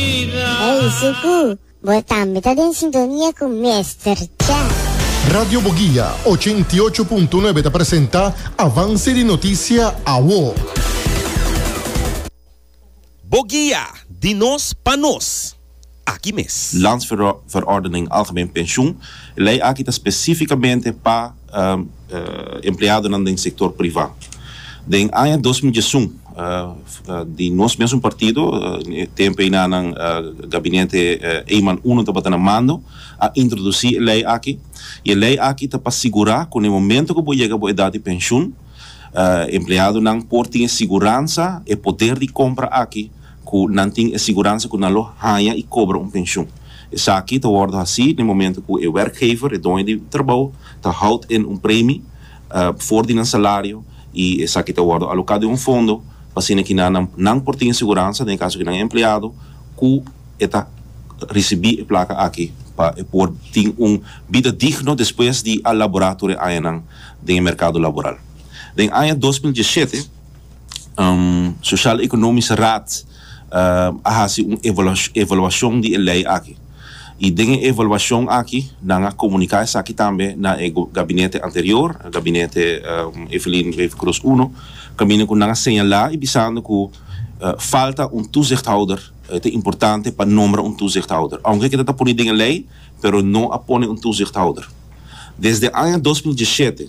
Eisi ku bo tambe ta den sintonia ku Mester Chef. Radio Boguia ochenta i ocho punto nuebe ta presenta Avance di Noticia Awo. Boguia, di nos pa nos, aki mes. Landsverordening Algemeen Pensioen, e lei aki ta spesífikamente pa. empleadonan den sektor privá. Den aña dos mil diesun, di nos mesun partido, tempu eina nan gabinete Eman Uno tabata na mando, a introdusí e lei aki. I e lei aki ta pa sigurá ku na e momentu ku bo yega bo edat di penshun, empleadonan por tin e siguransa, e poder di kompra aki ku nan tin e siguransa ku nan lo haña i kobra un penshun. Esaki ta wòrdu hasí den momentu ku e wèrkgever, e doño di trabou, ta houd en un premi for di nan salario i esaki ta wòrdu aloká den un fondo pa asina kina nan nan por tin e siguransa, den e kaso ku nan e empleado, ku e ta risibí e plaka aki pa e por tin un bida digno despues di a laborá tur e añanan den e merkado laboral. Den aña dos mil diesshete. Sociaal Economische Raad a haci un evaluacion di e ley aki y den e evaluacion aki nan a comunica esaki tambe na e gabinete anterior, gabinete Evelyn Wever-Croes uno, caminda cu nan a señala y bisando cu falta un toezichthouder, e ta importante pa nombra un toezichthouder, aunke keda ta pone den e ley pero no a pone un toezichthouder. Desde aña dos mil diesisiete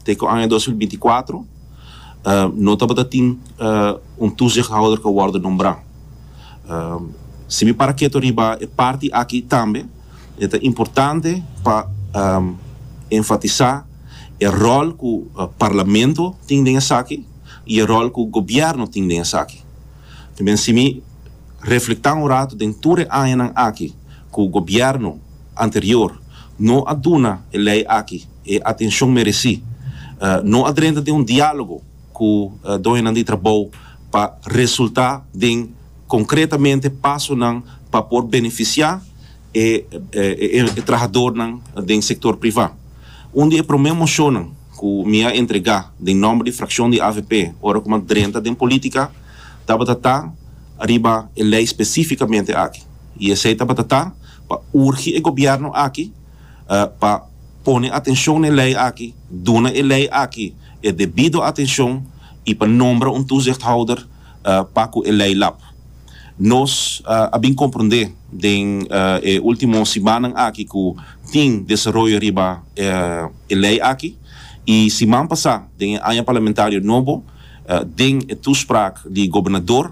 te cu aña dos mil binti kuatro, no tabata tin un toezichthouder cu a wordo nombra. Si mi para keto riba e parti aki tambe, e ta importante pa enfatisa e rol cu Parlamento tin den esaki y e rol cu Gobierno tin den esaki. Ta bien si mi reflecta un rato den tur e añanan aki cu Gobierno anterior no a duna e ley aki, e atencion mereci. No a drenta den un dialogo cu doñonan di trabou pa resulta den concretamente pasonan pa por beneficia e trahadornan den sector priva. Un di e prome mocionnan cu mi a entrega den nomber di fraccion di avp ora cu mi a drenta den politica tabata ta riba e ley specificamente aki y esey tabata ta pa urgi e gobierno aki pa pone atencion n'e ley aki, duna e ley aki e debido atencion y pa nombra un toezichthouder pa cu e ley lap. Nos a bin comprende den e ultimo simannan aki cu tin desaroyo riba e ley aki y siman pasa den e aña parlamentario nobo den e toespraak di gobernador,